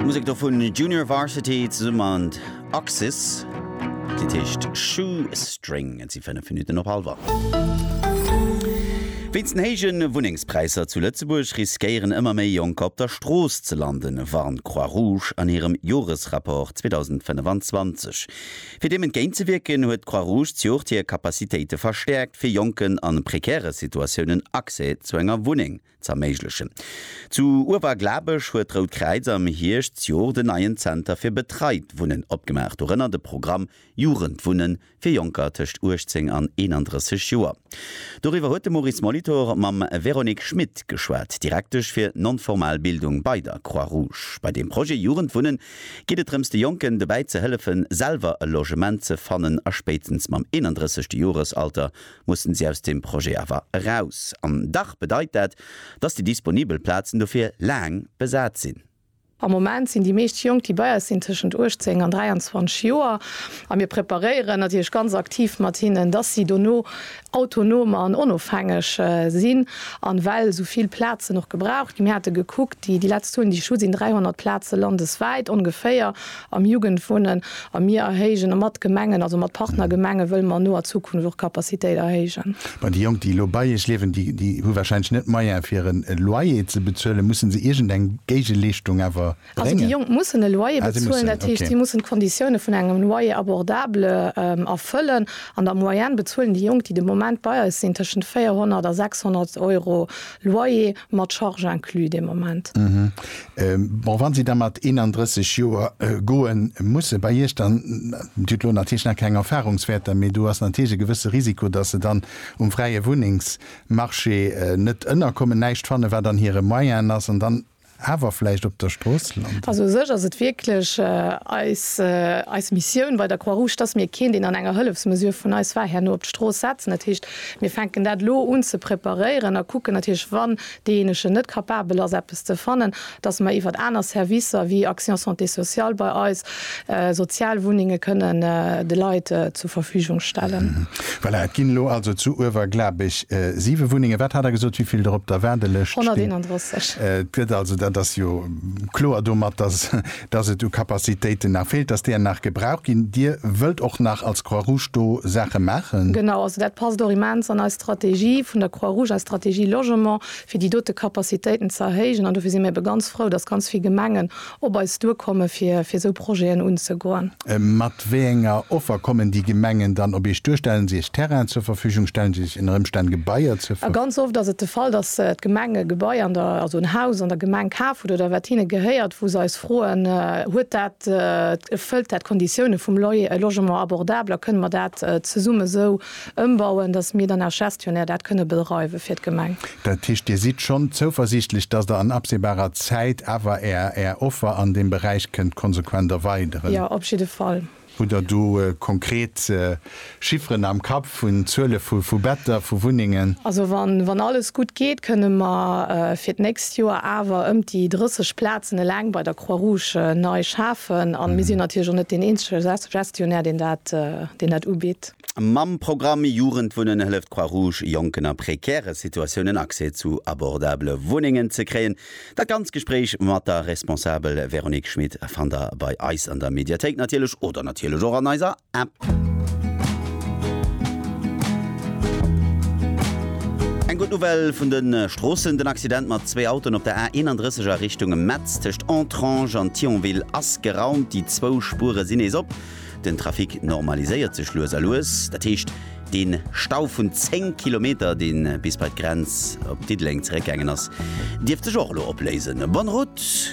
D'Musek do vun Junior Varsity zesumme mat Axis. D'Lidd heescht Shoestring. Et si 5 Minutten op hallwer. Wéinst den héije Wunnengspräisser zu Lëtzebuerg riskéieren ëmmer méi Jonker op der Strooss ze landen, warnt d'Croix Rouge an hirem Joresrapport 2025. Fir deem entgéint ze wierken, huet d'Croix Rouge d'Joert hir Capacitéite verstäerkt, fir Jonken a prekäre Situatiounen Accès zu enger Wunneng z'erméiglechen. Zu Uewerglabech huet d'Rout Kräiz am Hierschtjoer den neien Zenter fir betreit Wunnen opgemaach, dorënner de Programm Jugendwunnen fir Jonker tëscht 18 an 31 Joer. Doriwwer huet de Maurice Molitor mam Véronique Schmit geschwat, Direktesch fir non-formal Bildung bei der Croix-Rouge. Bei dem Projet Jugendwunnen geet et drëms, de Jonken dobäi ze hëllefen, selwer e Logement ze fannen a spéitstens mam 31. Joresalter mussen si aus deem Projet awer eraus. An dach bedeit dat, dass déi disponibel Plazen dofir laang besat sinn. Am Moment sinn déi meescht Jonk, déi bei eis sinn, tëschent 18 an 23 Joer. A mir preparéieren natierlech ganz aktiv mat hinnen, dass si dono autonom an onofhängeg sinn. An well esou vill Plazen och gebraucht ginn, mir hate gekuckt, déi letzt Zuelen, déi ech hunn, sinn 300 Plaze landeswäit ongeféier, Am Jugendwohnen, a mir erhéijen, a mat Gemengen, also mat Partnergemenge wëlle mer an noer Zukunft och d'Capacitéit erhéijen. Mä déi Jonk, déi elo bei Iech liewen, déi, déi hu wahrscheinlech net d'Moyen fir en Loyer ze bezuelen. Mussen se iergendeng Géigeleeschtung awer bréngen? Also déi Jonk mussen e Loyer bezuelen. Ah, si mussen, Dat heescht, okay. si mussen d'Konditioune vun engem Loyer abordable erfëllen. An der Moyenne bezuelen déi Jonk, déi de Moment bei eis sinn, tëschent 400 a 600 Euro Loyer. Mat Charge inclus dee Moment. Bon, wa si da mat 31 Joer goe musse bei Iech, dann, Dir hutt elo natierlech nach keng Erfarungswäerter, mee do ass natierlech e gewësse Risiko, datt se dann um fräie Wunnengsmarché net ënnerkommen, näischt fanne wat an hire Moyenë ass an dann awer vläicht op der Strooss landen. Also u sech ass et wierklech eis, eis Missioun bei der Croix-Rouge, datt mir keen, deen an enger Hëllefsmesure vun eis war, herno op d'Strooss setzen. Dat heescht, Mir fänken dat elo un ze preparéieren a kucken natierlech, wann deejéinegen net capabel ass eppes ze fannen, datt mer iwwert aner Servicer wéi Action Santé Sociale bei eis sozial Wunnenge kënnen de Leit zur Verfügung stellen. Voilà, et ginn elo also zu Uewerglabech siwe Wunnengen. Wat hat Der gesot, wéivill der op der Waardelëscht stinn? 131. Et gëtt also, dat ass jo kloer domat, datt dass et u Capacitéiten nach feelt, dass där nach gebraucht ginn. Dir wëllt och nach als Croix-Rouge do Saache maachen? Genau, also dat passt och immens an eis Strategie vun der Croix-Rouge, eis Strategie Logement, fir déi dote Capacitéiten ze erhéijen. An dofir si mir ebe ganz frou, dass ganz vill Gemengen op eis duerkomme fir esou Projeten unzegoen. Mat wéi enger Offer kommen déi Gemengen dann op Iech duer? Stellen si Iech Terrainen zur Verfügung? Stellen si Iech ënner Ëmstänn Gebaier zur Verfügung? Ganz oft ass et de Fall, dass d'Gemeng e Gebai an der, also en Haus an der Gemeng kaf huet oder wat hinne gehéiert, wou se eis froen, Huet dat, erfëllt dat d'Konditioune vum Loyer, logement abordable a kënne mer dat zesumme esou Ëmbauen, dass mir dann als Gestionnaire dat kënne bedreiwe fir d'Gemeng. Dat heescht, Dir sidd schonn zouversiichtlech, dass Der an absehbarer Zäit awer Är Offer an deem Beräich kënnt konsequent erweideren? Jo, op jidde Fall. Hutt Der do konkret Chifferen am Kapp vun Zuele vu Better, vu Wunnengen? Also wann alles gutt geet, kënne mer fir d'nächst Joer awer ëm déi 30 Plazen eleng bei der Croix-Rouge nei schafen. A mir sinn natierlech och net deen eenzege Gestionnaire, deen dat ubitt. Mam Programm Jugendwunnen hëlleft d'Croix Rouge Jonken a prekäre Situatiounen Accès zu abordabele Wunnengen ze kréien. Dat ganz Gespréich mat der Responsabel Véronique Schmit fannt der bei eis an der Mediathéik natierlech oder natierlech och an eiser App. Eng gutt Nouvelle vun de Stroossen, Den Accident mat zwee Autoen op der A 31 a Richtung Metz tëscht Entrange an Thionville ass geraumt. Déi zwou Spure sinn nees op. Den Trafic normaliséiert sech lues a lues. Dat heescht, dee Stau vun 10 Kilometer, dee bis bei d'Grenz op Diddeleng zeréckgaangen ass, dierft sech och elo opléisen. Bonne route!